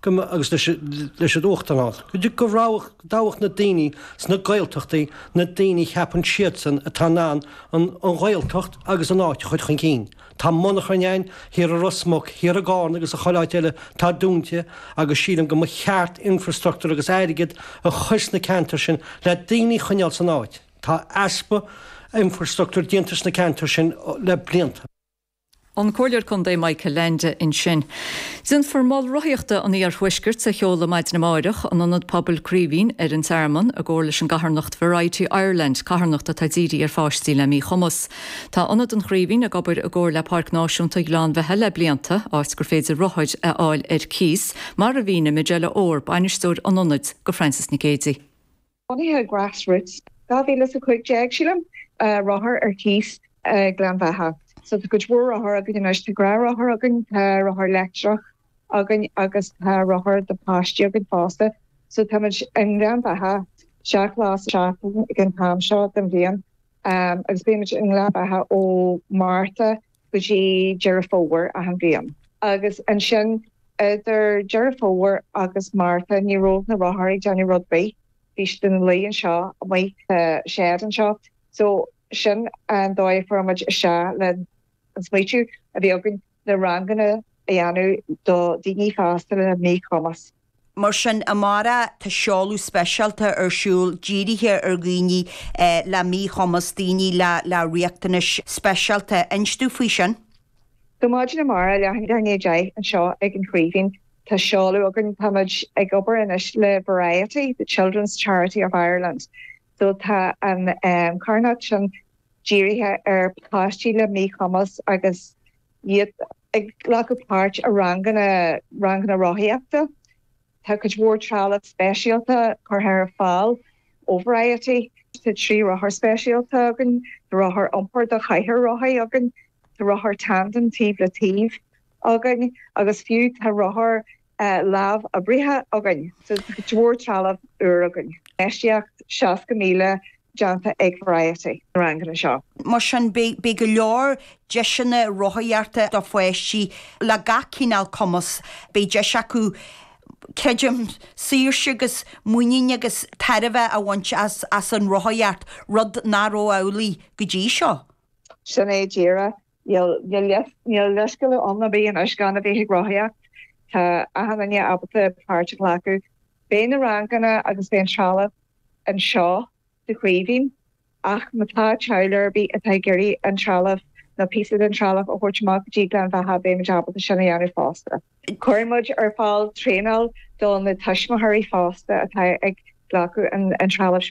go mba agus leis an Uachtarán, go dtoghfadh, go dtoghfadh na daoine sna Gaeltachtaí na daoine a cheapann siadsan atá in ann an Ghaeltacht agus an áit a chur chun cinn. Tá monarchain againn thiar i Ros Muc, thiar i gCárna agus i chuile áit eile atá dúnta agus sílim go mba cheart infrastruchtúr agus airgead a chur sna ceantair sin le daoine a choinneáil san áit. Tá easpa infrastruchtúr déanta sna ceantair sin le blianta. An Comhairleoir Contae Michael Leainde ansin. Déanfar Mol Rothaíochta an Iarthuaiscirt a sheoladh maidin amárach in Ionad Pobail Craoibhín ar an Tearmann, i gcomhar leis an gcarthanacht Variety Ireland, carthanacht atá dírithe ar pháistí le míchumas. Tá Ionad an Chraoibhín ag obair i gcomhar le Páirc Náisiúnta Ghleann Bheatha le blianta, áit gur féidir rothair a fháil ar cíos, mar a mhínigh Majella Orr, Bainisteoir an Ionaid, do Frances Nic Géidigh. Bunaíodh Grass Routes, 2015, sílim, rothair ar cíos i nGleann Bheatha. So tá cuid mhór rothar againn anois, tá gnáthrothair againn, tá rothair leictreach againn agus tá rothair do páistí againn fosta. So táimid i nGleann Bheatha seacht lá sa tseachtain ag an t-am seo den bhliain agus bímid i nGleann Bheatha ó Márta go dtí Deireadh Fómhair achan bhliain. Agus ansin idir Deireadh Fómhair agus Márta ní raibh na rothair ag déanamh rud ar bith, bhí siad ina luí anseo amuigh sa shed anseo. So sin an dóigh a fuair muid isteach le an smaoitiú a bhí againn na ranganna a dhéanamh do daoine fásta le míchumas. Mar sin, amárach tá seoladh speisialta ar siúl dírithe ar dhaoine le míchumas, daoine le riachtanais speisialta. Inis dúinn faoi sin? So maidin amárach, leathuair i ndiaidh a deich, anseo ag an Chraoibhín, tá seoladh againn. Táimid ag obair anois le Variety, the Children's Charity of Ireland. So tá an carthanacht sin dírithe ar páistí le míchumas agus. iad ag glacadh páirt i ranganna, ranganna rothaíochta. Tá cuid mhór trealamh speisialta curtha ar fáil ó Variety. Tá trí rothar speisialta againn, tá rothar iompair do chathaoir rothaí againn, tá rothar tandem taobh le taobh againn agus fiú tá rothar lámhoibrithe againn so cuid mhór trealamh úr againn. Infheistíocht 60,000 déanta ag Variety sna ranganna seo. Mar sin, beidh go leor deiseanna rothaíochta do pháistí le gach cineál cumas. Beidh deis acu, creidim, saoirse agus muinín agus tairbhe a bhaint as an rothaíocht, rud nach raibh amhlaidh go dtí seo. Sin é díreach Níl leithscéal ann ag éinne anois gan a bheith ag rothaíocht. Tá achan duine ábalta páirt a ghlacadh. Beidh na ranganna agus beidh an trealamh anseo sa Chraoibhín ach ma tá teaghlaigh ar bith atá ag iarraidh an trealamh nó píosa den trealamh a thabhairt amach go dtí Gleann Bheatha beimid ábalta sin a dhéanamh fosta. Cuirfidh muid ar fáil traenáil do na tuismitheoirí fosta atá ag glacadh an trealamh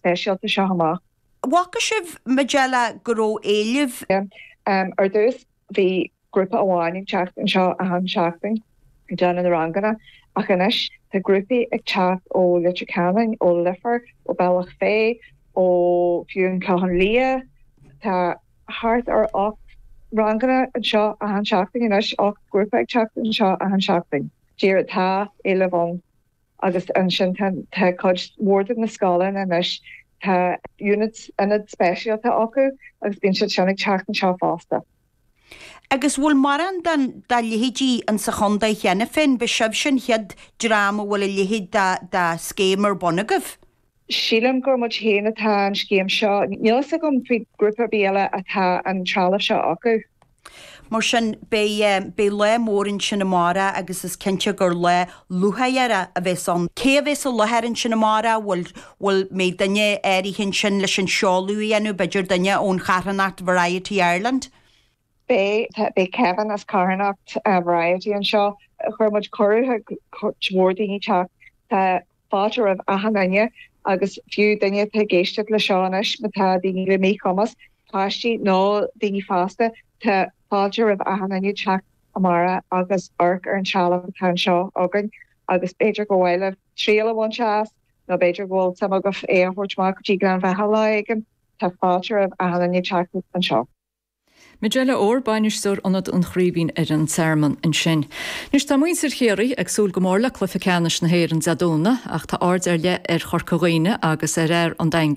speisialta seo amach. Bhfaca sibh Majella go raibh éileamh. Em, ar dtús bhí grúpa amháin ag teacht anseo achan seachtain ag déanamh na ranganna ach anois tá grúpaí ag teacht ó Leitir Ceanainn, ó Leifear, ó Bealach Féith, ó fiú an Clochán Liath. Tá thart ar ocht ranganna anseo achan seachtain anois, ocht grúpa ag teacht anseo achan seachtain. Díreach tá éileamh ann. Agus ansin tá cuid mhór de na scoileanna anois, tá units, ionaid speisialta acu agus bíonn siad sin ag teacht anseo fosta. Agus bhfuil mórán dá leithéidí in sa chondae cheana féin? Ba sibhse an chéad dream a bhfuil a leithéid dá scéim ar bun agaibh? Sílim gur muid amháin atá an scéim seo. Níl fhios agam faoi grúpa ar bith eile atá an trealamh seo acu. Mar sin, beidh lá mór ansin amárach agus is cinnte gur lá lúcháireach a bheas ann. Cé a bheas i láthair ansin amárach? An mbeidh duine áirithe ansin leis an seoladh a dhéanamh, b'fhéidir duine ón charthanacht Variety Ireland. Beidh Kevin as carthanacht Variety anseo. Chuir muid cuireadh chuig cuid mhór daoine teacht. Tá fáilte roimh achan duine agus fiú daoine atá ag éisteacht le seo anois ma tá daoine le míchumas, páistí nó daoine fásta, tá fáilte roimh achan duine teacht amárach agus amharc ar an trealamh atá anseo againn agus b'fhéidir gur mhaith libh triail a bhaint as nó b'fhéidir go bhfuil suim agaibh é a thabhairt amach go dtí Gleann Bheatha lá éigin, tá fáilte roimh achan duine teacht anseo. Majella Orr, Bainisteoir Ionad an Chraoibhín ar an Tearmann ansin. Anois tá muintir Chiarraí ag súil go mór le cluiche ceannais na hÉireann Dé Domhnaigh ach tá aird ar leith ar Chorca Dhuibhne agus ar fhear an Daingin,